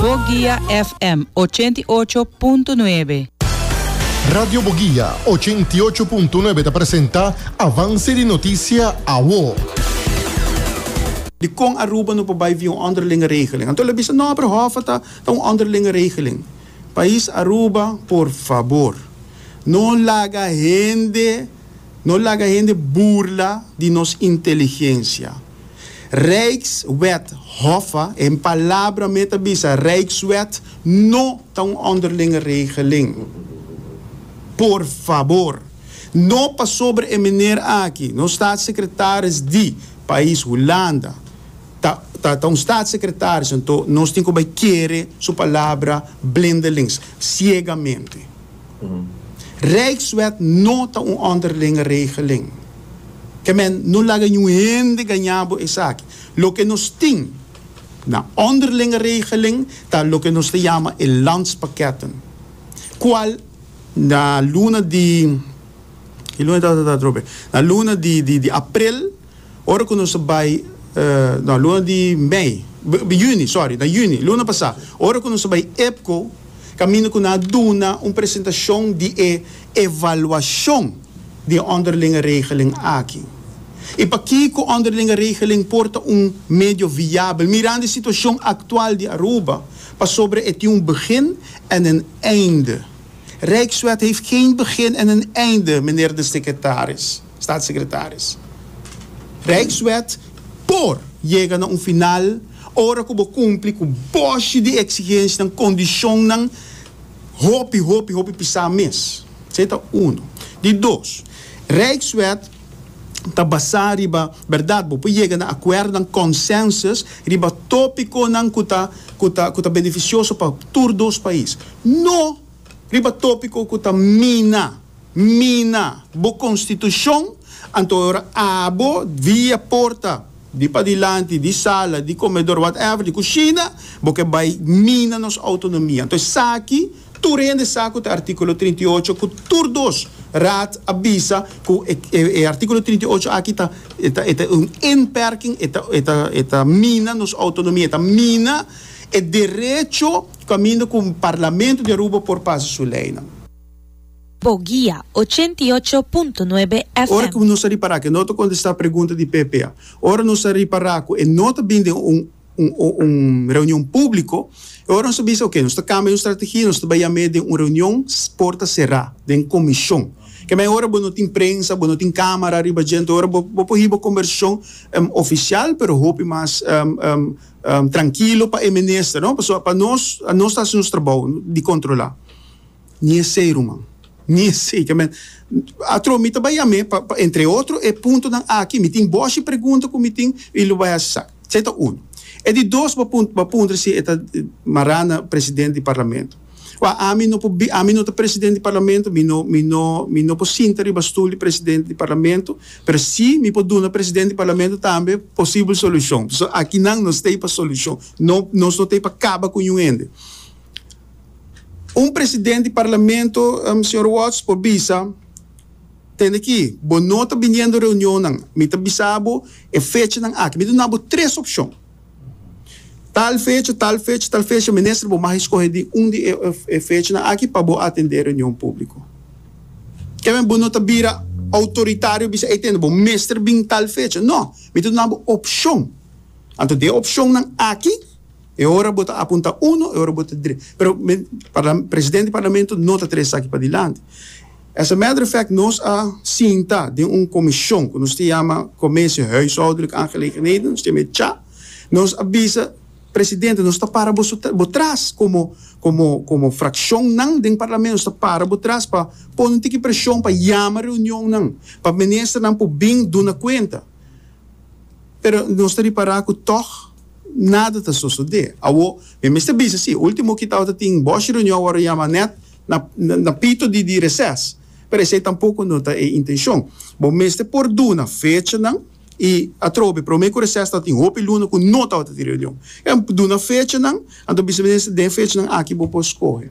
Boguia FM ochenta i ocho punto nuebe. Radio Boguia ochenta i ocho punto nuebe ta presenta Avance di Noticia Awo. Di kon Aruba no por bai via un onderlinge regeling? Anto lo bisa, No, pero hòf a ta ta un onderlinge regeling. Pais Aruba, por fabor, no laga hende. No laga hende burla di nos inteligencia. Rijkswet hoffe, en palabra me ta bisa Rijkswet no ta un onderlinge regeling. Por fabor, no pasobra e meneer aki, nos staatssecretaris di pais Hulanda, ta ta ta un staatssecretaris anto nos tin cu bay kere su palabra blindelings, ciegamente. Rijkswet no ta un onderlinge regeling. Kemen no laga niun hende gañá bo esaki. Loke nos tin na onderlinge regeling ta loke nos ta yama e landspakketten, kual na luna di, ki luna di atrobe? Na luna di aprel. Ora cu nos a bay, na luna di mei, juni, sorry, na juni, luna pasá, ora cu nos a bay EPCO, caminda cu nan a duna un presentacion di e evaluacion di e onderlinge regeling aki. Y pakico onderlinge regeling por ta un medio viabel, mirando e situacion actual di Aruba, pasobra e tin un begin en een einde. Rijkswet heeft geen begin en een einde, meneer de secretaris. Staatssecretaris. Rijkswet por yega na un final ora ku bo kumpli ku boshi di eksigensnan, kondishonnan hopi, hopi, hopi pisá mes. Esei ta unu. Di dos, Rijkswet ta basá riba bèrdat bo por yega na akuerdonan, consensus, riba topikonan ku ta ku ta ku ta benefisioso pa tur dos pais, no riba topiko ku ta mina Mina bo konstitushon, anto ora abo via porta di padilanti di sala di komedor whatever di kushina bo ke bai mina nos outonomia. Anto esaki tur hende sa ku ta artikulo trinta i ocho ku tur dos raad a bisa ku e artikulo trinta i ocho aki ta e ta un inperking e ta e ta mina nos outonomia e ta mina e derecho kaminda ku Parlamento di Aruba por pasa su leinan. Bo guia, ochenta i ocho punto nuebe Ora ku FM. nos a ripará ku e no ta kontestá pregunta di PPA, ora nos a ripará ku e no ta bini den un un un reunion públiko, e ora nos a bisa, oke, nos ta kambia nos strategia, nos ta bai yam'é den un reunion porta será, den komishon. Ke mai ora bo no tin prensa, bo no tin kámara riba djent, e ora bo bo por hiba kombersashon ofisial, pero hopi mas trankilo pa e minister, no? Pasobra pa nos, nos ta hasi nos trabou di kontrolá. Ni esei, ruman. Ni esei. Ke men, atro mi ta bai yam'é pa, pa entre otro e puntonan aki. Mi tin boshi pregunta ku mi tin i lo bai hasi sa. Esei ta unu. E di dos bo bo a puntra si e ta mará na presidente di parlamento. Wak, ami no por bi, ami no ta presidente di parlamento, mi no, mi no, mi no por sinta riba stul di presidente di parlamento, pero si mi por duna presidente di parlamento tambe posibel solushon. So, aki nan nos t'ei pa solushon. No, nos no t'ei pa kaba ku niun hende. Un president di parlamento, Señor Watts, por bisa, Tende aki, bo no ta biniendo reunionnan, mi ta bisa bo e fechanan aki. Mi ta duna bo tres opcion. Tal fecha, tal fecha, tal fecha, minister, bo mag escoge di un di e fechanan aki pa bo atende e reunion publico. Keme bo no ta bira autoritario bisa, Ey tende, bo mester bin tal fecha. No, mi ta duna bo opcion. Anto di e opcionnan aki, E ora bo ta apunta uno, e ora bo ta dre. Pero mi parla, presidente di parlamento no ta trae esaki padilanti. As a matter of fact, nos a sinta den un commision cu nos ta yama Commissie Huishoudelijke Aangelegenheden, nos ta yama e cha. Nos a bisa presidente, nos ta para bo su, bo tras como, como, como fraccionnan den parlamento, nos ta para bo tras pa pone un tiki presion pa yama reunionnan, pa ministernan por bin duna cuenta. Pero nos ta ripara cu tog Nada ta sosode. Awo, mi mester bisa si, ultimo ki tabata tin boshi reunion awor a yama net na na pito di di reses. Pero esei tampoco no ta e intencion. Bo mester por duna fechanan y atrobe prome cu reses tabata tin hopi luna cu no tabata tin reunion. Ken duna fechanan, anto bisa minister den fechanan aki bo por scoge.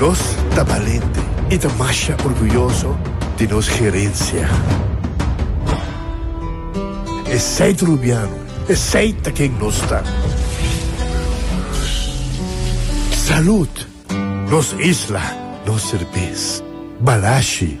Nos ta balente i ta masha orguyoso di nos gerensia. Esei ta Rubiano, esei ta ken nos ta. Salud! Nos isla, nos serbes. Balashi!